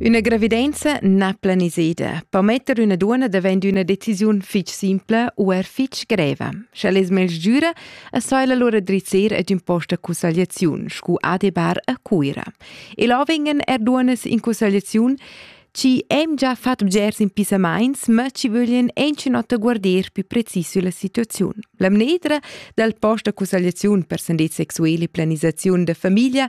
Üna gravidenza na planiseda po metter üna duonna davent üna decisiun fich simpla u er fich greva. Sch'el es mel giüra, as so el allura drizzer ad ün post da cussagliaziun, scu adebar a Cuira. E là vengan er duonnas in cussagliaziun chi hem già fat bgers impissamaints, ma chi vöglien anchinota guarder più precis sülla situaziun. La mnedra dal post da cussagliaziun per sandez sexueli e planisaziun da famiglia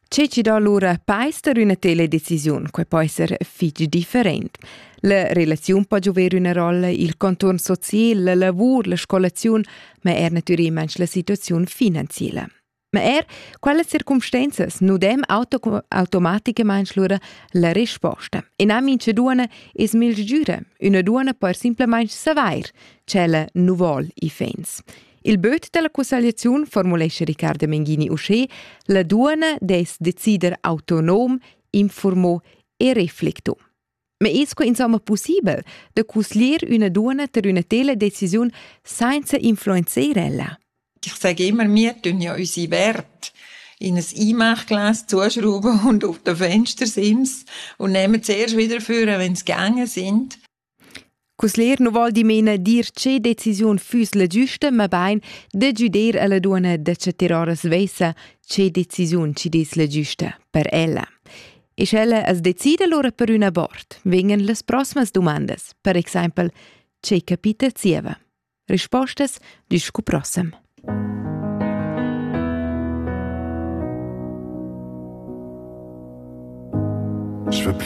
Che ci do allura pais per üna tela decisiun, quai po esser fich different. La relaziun po giover üna rolla, il conturn social, la lavur, la scolaziun, ma er natürimaing la situaziun finanziela. Ma er quelle circumstanzas nu dem auto automaticamaing lura la risposta. E nam in ce duana es mil sgüra, üna duana per simplamaing savair, ch'ella nu vol i fens. Il böt dalla cussagliaziun formulescha Riccardo Menghini uschè: la duana dess decider autonom, informo e reflecto. Ma es que insomma possibel da cusglier üna duana ter üna tela decisiun sainza influenzer ella? Ich sage immer, wir tun ja unsere Werte in ein Einmachglas zuschrauben und auf den Fenster sind und nehmen zuerst wieder vor, wenn sie gegangen sind. Cusler nu voul dimena dir che decisiun füss la giüsta, mabain da güder a la duonna da chattar ora svessa che decisiun chi dess la giüsta per ella. E sch'ella as decida lura per ün abort, vegnan las proximas dumandas, per exaimpel «Che capita zieva?» Rispostas discu prossem.